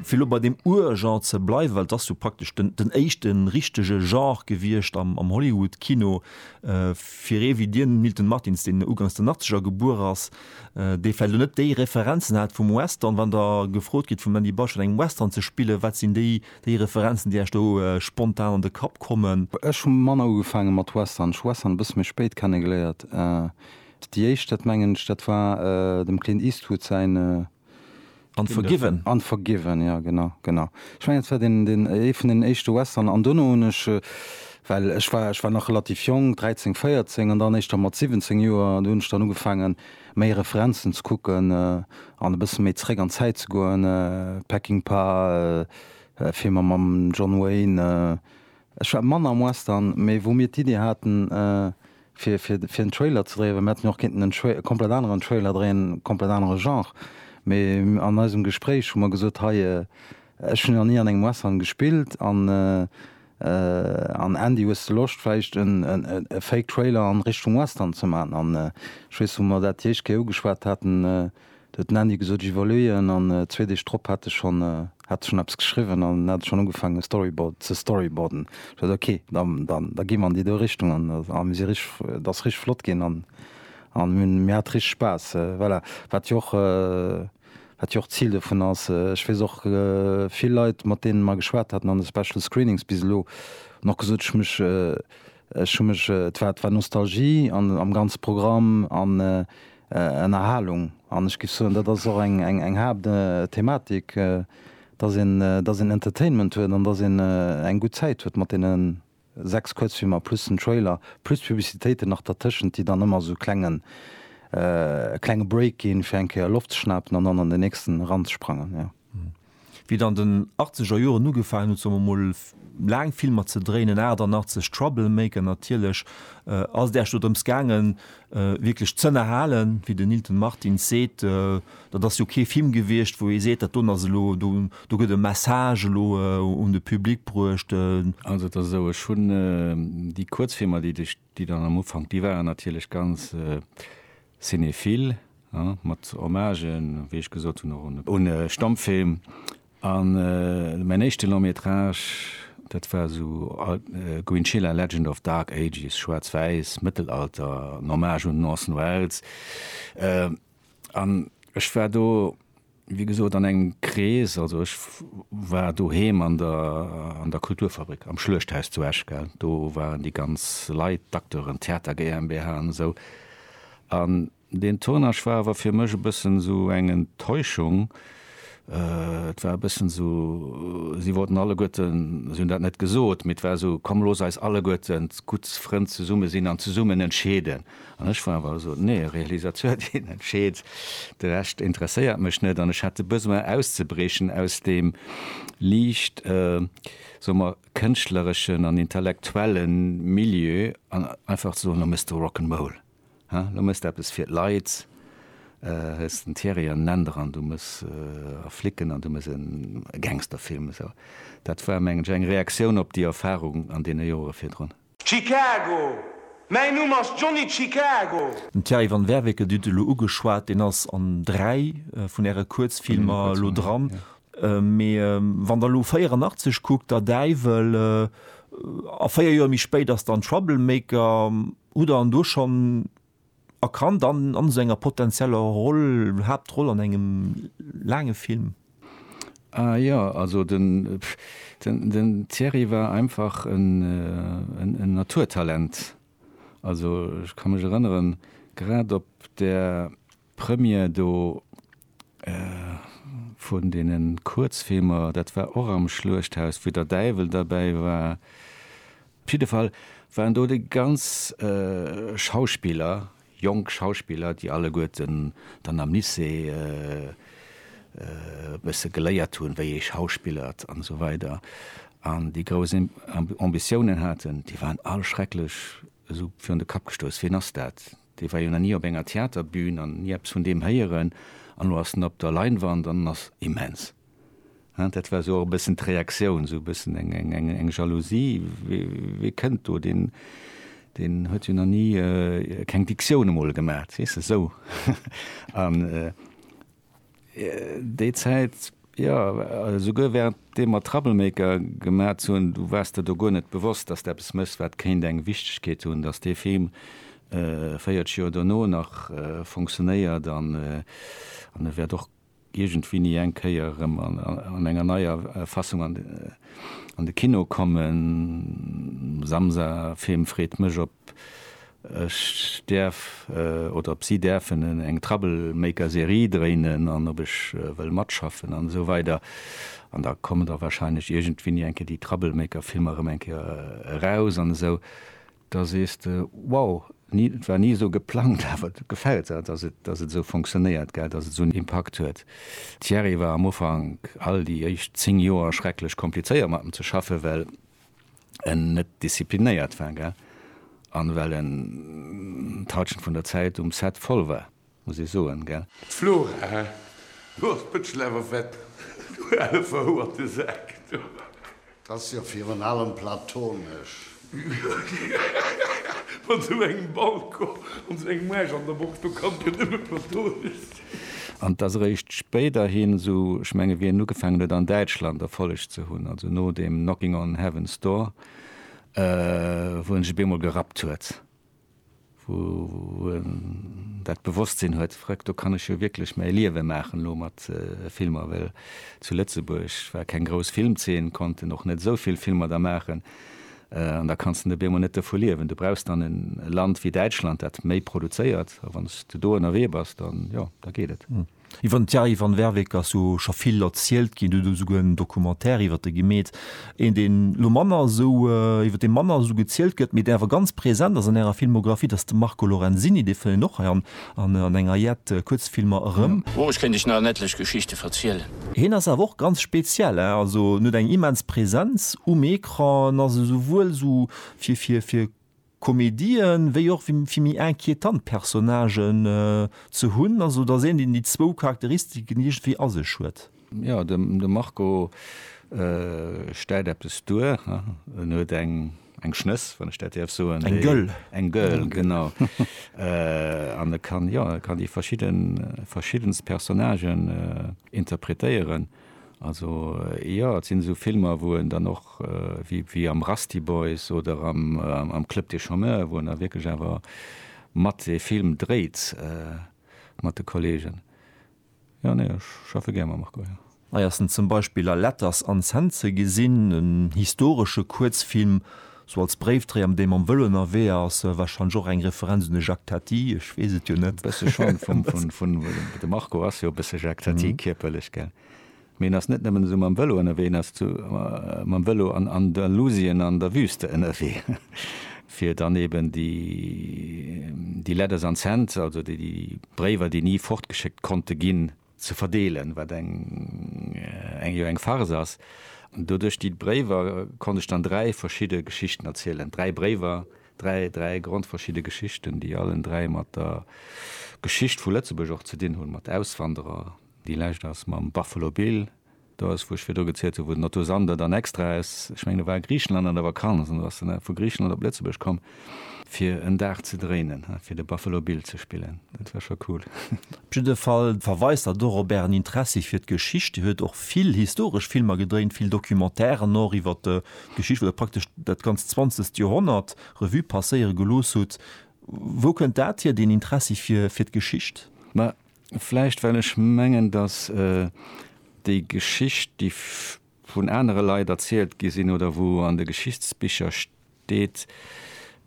Fir elo bei deem Ur-Genre ze bleiwen, well et ass jo praktesch den éischte richtege Genre gewiescht am Hollywood-Kino, fir ee wéi dir, den Milton Martins, deen ugangs den Achtzeger gebuer ass, dee vläicht elo net déi Referenzen hat vum Western, wann der gefrot gitt vum Mandy Bush an engem Western ze spillen, wat sinn déi Referenzen, déi Iech do spontan an de Kapp kommen? Ech hu manner ugefaange mat Western, ech hu Western e bësse méi spéit kennegeléiert. Déi éischt, dat mengen ech, dat war dem Clint Eastwood säin. Unforgiven. Unforgiven, jo, genau, genau. Ech mengen, dat war deen, deen, ee vun deenen éischte Western. An duerno hunn ech, well ech war, ech war nach relativ jonk, 13, 14, an dann éischter mat 17 Joer, do hunn ech dann ugefaangen, méi Referenzen ze kucken an e bësse méi zeréck an d'Zäit ze goen, Peckinpah, Filmer mam John Wayne, Ech war manner am Western, mee wou mir d'Idee haten, fir, fir, fir en Trailer ze dréien, well mir hätten jo och kéinten en Tra, e komplett aneren Trailer dréien, komplett anere Genre, mee an eisem Gespréich hu mer gesot, hei, ech hunn jo nach ni an engem Western gespillt an, an Andy, hues de Loscht vläicht en, en, e Fake Trailer an Richtung Western ze maachen? An ech weess, wou mer dat déi éischt Kéier ugeschwat haten, Huet den Andy gesot, ech iwwerleeën. An zwee Deeg drop hat ech schonn hat ech schonn eppes geschriwwen an hat ech schonn ugefaangen e Storyboard ze storyboarden. Ech sot, ok, da da gi mer an déi do Richtung an a mir si richteg, et ass richteg flott ginn an an mir hunn mir hat richteg Spaass. Voilà, wat jo och wat jo och d'Zil dovun ass. Ech weess och vill Leit mat deenen mer geschwat haten an de Special Screenings bis elo hunn och gesot, ech hu mech ech hu mech et war et war Nostalgie an am ganze Programm an Ënnerhalung. An ech géif soen, dat ass och eng Haaptthematik, dass een Entertainment huet an dass een eng gutt Zäit huet mat deene sechs Kuerzfilmer plus den Trailer plus d'Publicitéiten nach dertëschent, déi dann ëmmer esou e klenge Break gi fir eng Kéier Loft ze schnapen an dann an den nächsten eranzesprangen. Wéi et an den achtzeger Joren ugefaangen huet somme mol laang Filmer ze dréinen, 88 Troublemaker natierlech, ass et äerch do drëms gaangen wierklech z'ënnerhalen. Wéi den Nilton Martins seet, dat ass jo kee Film gewiescht wou ee seet dat doen ass elo, do gëtt e Message elo un de Public bruecht. Also et ass esou, ech hunn déi Kuerzfilmer déi de. déi dann am Ufank, déi waren natierlech ganz cinéphile, he, mat Hommagen, wéi ech gesot hunn, och un e Stammfilm. An mäin éischte Long-métrage, dat war esou Goinchilla, Legend of Dark Ages, schwaarz-wäiss, Mëttelalter, en Hommage un den Orson Welles. An ech war do. Wéi gesot an engem Krees, also ech war doheem an der an der Kulturfabrik am Schluechthaus zu Esch, gell, do waren déi ganz Leit, d'Acteuren, d'Theater GmbH an esou. An deen Tournage war awer fir mech e bëssen esou eng Enttäuschung. Et war e bëssen esou, si wollten alleguerten, si hunn dat net gesot, mee et war esou, komm looss eis alleguerten gutt Frënn zesumme sinn an zesummen entscheeden. An ech war awer eso, nee, e Realisateur deen entscheet, de Rescht interesséiert mech net. An ech hat de Besoin auszebriechen aus deem liicht, soe mer, kënschtlereschen an intellektuelle Milieu an einfach ze soen, lo méchs de Rock 'n' Roll, he, lo méchs de eppes fir d'Leit, hues den Thierry an den Änder an du méchs a Flicken an du méchs e Gangsterfilm. Esou, dat war mengen ech eng Reaktioun op déi Erfarung an deene Jore virdrun. Chicago, Mäin Numm ass Johnny Chicago. Den Thierry Van Werveke, Dir hutt e lo ugeschwat, deen ass an dräi vun Äre Kuerzfilmer elo dran. Mee wann Der elo 84 kuckt, Der Däiwel, a véier Joer méi spéit ass dann Troublemaker, hutt Der an do schonn a kann dann an esou enger potenzieller Roll, Haaptroll an engem laange Film. Ah jo, also den den den Thierry war einfach en en Naturtalent. Also ech ka mech erënneren, grad op der. D'Première do vun deene Kuerzfilmer, dat war och am Schluechthaus, wou der Däiwel derbäi war. Op jidde Fall waren do déi ganz Schauspiller, jonk Schauspiller, déi alleguerten dann am Lycée e bësse geléiert hunn, wéi ee schauspillert an esou weider an déi grouss Ambitiounen haten, déi waren all schrecklech esou virun de Kapp gestouss, wien ass dat? Dee war jo nach ni op enger Theaterbün an ni eppes vun deem héieren an elo ass en op der Leinwand an en ass immens. Dat war esou och e bëssen d'Reaktioun, esou e bëssen eng Jalousie. Wee kënnt do, deen huet jo nach ni keng Dictioun emol gemat, weess de, esou. Déi Zäit, jo, esouguer wärend deem mer Troublemaker gemat hunn, du waars der do guer net bewosst, dass de eppes méchs, wat kéint eng Wichtegkeet hunn, dass dee Film 40 Joer dono nach funktionéiert an e wäert och iergendwéini eng Kéier erëm an enger neier Fassung an de Kino kommen. Samsa-Film freet mech op Ech däerf, oder ob si däerfen, eng Troublemaker-Serie dréinen an ob ech wëll matschaffen an esou weider. An da kommen da warscheinlech iergendwéini eng Kéier déi Troublemaker-Filmer erëm eng Kéier eraus an esou. Da sees de, wow, ni, et war ni esou geplangt, awer et gefält der, dass et, dass et esou funktionéiert, gell, dass et esou en Impakt huet. Thierry war am Ufank, all déi éischt zéng Joer, schrecklech komplizéiert mat em ze schaffen, well. en net disziplinéiert war, gell, an well en d'Halschent vun der Zäit um Set voll war, muss ee soen, gell. D'Flora, do ass d'Bëtschel awer fett, du ale verhouerte Sak, du. T'ass jo virun allem platonesch. Mat sou engem Balcon an sou engem Aarsch an der Box, do kann et jo nëmme platonesch sinn. An dass eréischt spéiderhin, esou ech menge Wien, ugefaangen huet an Däitschland Erfolleg ze hunn, also no deem Knocking on Heaven's Door, wou en sech op eemol gerappt huet, wou en dat Bewosstsinn huet, Vrëck, do kann ech jo wierklech mäi Liewe maachen elo mat Filmer, well zu Lëtzebuerg war keng grouss Filmzeen, konnten och net esou vill Filmer da maachen, An da kanns de net op eemol net dovu liewen. Du brauchs dann e Land wéi Däitschland, dat méi produzéiert. A wann s de do ënnerwee bass, da jo, da geet et. Iwwer den Thierry Van Werveke ass jo scho vill erzielt ginn. Et huet esouguer en Documentaire iwwer e gemeet, een, deen elo manner esou, iwwer dee manner esou gezielt gëtt, mee deen awer ganz present ass an ärer Filmographie, dat ass de Marco Lorenzini. Dee fënnt een och hei an An an enger jett Kuerzfilmer erëm. Moresch kéint ech nach en etlech Geschichte verzielen. Hien ass awer och ganz speziell, hein, also en huet eng immens Präsenz um Ecran, en ass esouwuel esou fir fir fir Komedien, wéi och fir fir méi inquietant Personnagen ze hunn, also et ass een deen déi zwou Charakteristiken iergendwéi a sech huet. Jo, de Marco stellt eppes duer. En huet eng Schnëss, wann ech dat däerf soen. Eng gëll. Eng gëll, genau. An e kann, jo, e kann déi verschiddenst Personnagen interpretéieren. Also, jo, et sinn esou Filmer, wou en dann och, wéi am Rusty Boys oder am Club des chômeurs, wou en da wierklech awer mat ee Film dréit mat de Kolleegen. Jo, nee, ech schaffe gär mam Marco, jo. Hei ass en zum Beispill a Letters an Cent ze gesinn, en historesche Kuerzfilm, sou als Bréifdréier, mat deem en mam Vëlo ënnerwee ass. Warscheinlech och eng Referenz un de Jacques Tati, ech weess et jo net. E bësse schonn, vum, vun, vun, de Marco ass jo e bësse Jacques Tati, kierperlech, gell. Mee en ass net nëmmen esou mam Vëlo ënnerwee, en ass zu mam Vëlo an Andalusien an der Wüste ënnerwee, fir dann eben déi Letters unsent, also déi Bréiwer, déi ni fortgeschéckt konnte ginn, ze verdeelen, wat eng jo eng Farce ass. An do duerch déi Bréiwer konnt ech dann dräi verschidde Geschichten erzielen, dräi Bréiwer, dräi, dräi grondverschidde Geschichten, déi allen dräi mat der Geschicht vu Lëtzebuerg och ze dinn hunn, mat Auswanderer, Déi lescht ass mam Buffalo Bill. Do ass, wou ech virdru gezielt hunn, wou den Otto Sander dann extra aus, ech mengen e war a Griichenland an der Vakanz an do ass en vu Griichenland op Lëtzebuerg komm, fir en Dag ze dréinen, fir de Buffalo Bill ze spillen. Dat war scho cool. Op jidde Fall verweist dat och op Ären Interessi fir d'Geschicht. Dir huet och vill historesch Filmer gedréint, vill Documentairen och iwwer d'Geschicht, wou Der praktesch dat ganzt zwanzegt Joerhonnert Revue passéiere gelooss hutt. Wou kënnt dat hier, deen Interessi fir d'Geschicht? Ma, Vläicht well ech mengen, datt déi Geschicht, déi vun anere Leit erzielt gi sinn oder wou an de Geschichtsbicher steet,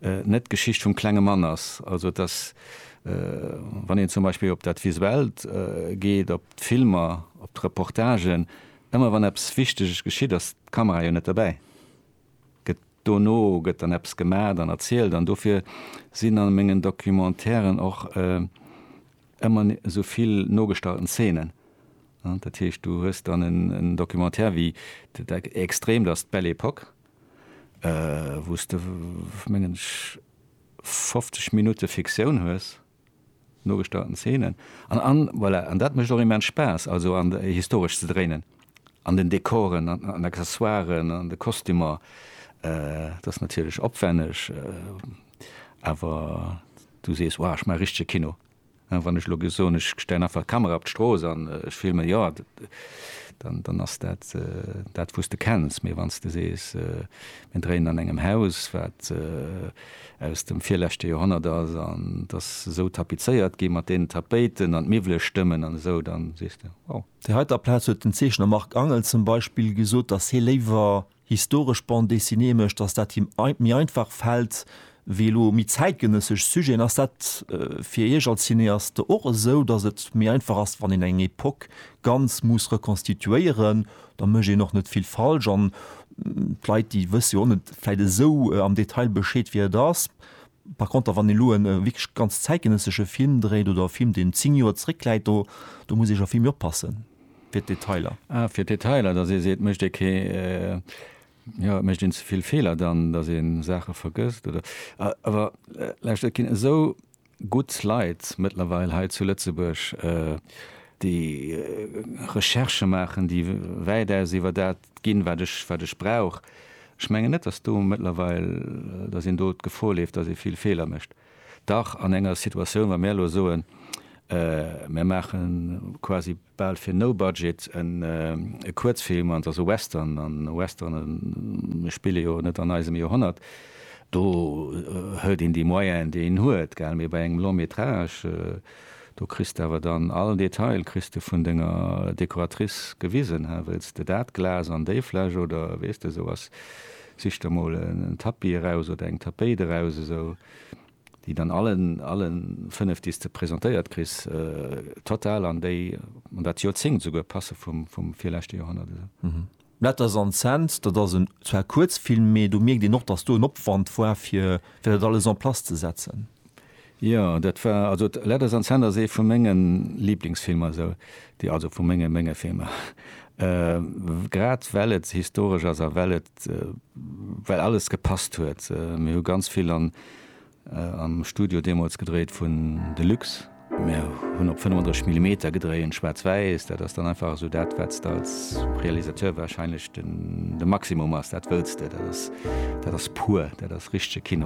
net d'Geschicht vum klenge Mann ass. Also datt, wann een zum Beispill op dat Visuellt geet, op d'Filmer, op d'Reportagen, ëmmer wann eppes Wichteges geschitt, ass d'Kamera jo net dobäi. gëtt dono gëtt dann eppes gemaacht an erzielt an dofir sinn an mengen Documentairen och ëmmer esou vill nogestallten Zeenen. Dat heescht du hues dann en Documentaire wéi Extrême, dat ass d'Belle Epoque, wou s de mengen ech 50 Minutte Fiktioun hues, Nogestauten Szenen an, an voilà, an dat mécht och immens Spaass, also an de, historesch ze dréinen, an den Dekoren, an, an Accessoiren, an de Kostümer. Et ass natierlech opwänneg, awer du sees, Wow, ech maache richtege Kino. Wann ech elo soen, ech stellen einfach d'Kamera op d'Strooss an ech filmen, jo, dann, dann ass dat dat, wou s de kenns. Mee wann s de sees, mir dréinen an engem Haus, wat aus dem virleschte Joerhonnert ass an et ass esou tapizéiert gi mat deenen Tapéiten an d'Miwwele stëmmen an esou, da sees de, wow. Déi heiter Plaz huet den Zeechner Marc Angel zum Beispill gesot, dass hie léiwer historesch Bande dessinée mécht, dass dat him méi einfach fält wéi elo méi zäitgenëssesch Sujeten. Ass dat fir Iech als Cineaste och esou, dass et méi einfach ass, wann een eng Epoque ganz muss rekonstituéieren, Da mécht een och net vill falsch an d'Leit, déi wësse jo och net vläit esou am Detail Bescheed, wéi et ass. Par contre, wann ee elo e wierklech ganz zäitgenëssesche Film dréit oder e Film, deen zéng Joer zréckläit, do, do muss ee scho vill méi oppasse fir d'Detailer. Ah, fir d'Detailer, dass ee seet, mécht ee kee, jo, mécht een ze vill Feeler dann, dass ee Saache vergësst oder? Awer, lauscht, et ginn esou gutt Leit mëttlerweil hei zu Lëtzebuerg, déi Recherchë maachen, déi wäitaus iwwer dat ginn, wat ech, wat ech brauch. Ech mengen net, datt do mëttlerweil, datt een do d'Gefor leeft, datt ee vill Feeler mécht. Dach an enger Situatioun, wa mir elo soen, mir maache quasi bal fir no budget e Kuerzfilm, an et ass e Western, an e Western, mir spille jo net an eisem Joerhonnert, Do hëlt een déi Moyenen, déi een huet, gell? Mee bei engem Long-métrage, do kriss de awer dann all Detail kriss de vun denger Dekoratrice gewisen, he? Wëlls de dat Glas an déi Fläsch oder, weess de, esou, ass, sich der mol en Tapis eraus oder eng Tapéit eraus, esou, déi dann allen, alle fënnef, déi s de presentéiert kriss, total an déi, an dat Joerzéngt esouguer passe vum, vum virleschte Joerhonnert, esou. Letters and Cents, dat ass en zwar Kuerzfilm, mee do mierkt een och, datt do en Opwand war, fir dat alles en place ze setzen. Jo, dat war, also Letters and Cents ass ee vu menge Liblingsfilmer, esou, déi, also vu menge, menge Filmer, grad well et historesch ass a well et, well alles gepasst huet. Mir hu ganz vill an. Am Studio deemools gedréit vun Deluxe. Mir hunn op 35 Millimeter gedréien, schwaarz-wäiss. Dat ass dann einfach esou dat, wat s de als Realisateur wahrscheinlech de Maximum ass. Dat wëlls de. Dat ass, dat ass pur. Dat ass richtege Kino.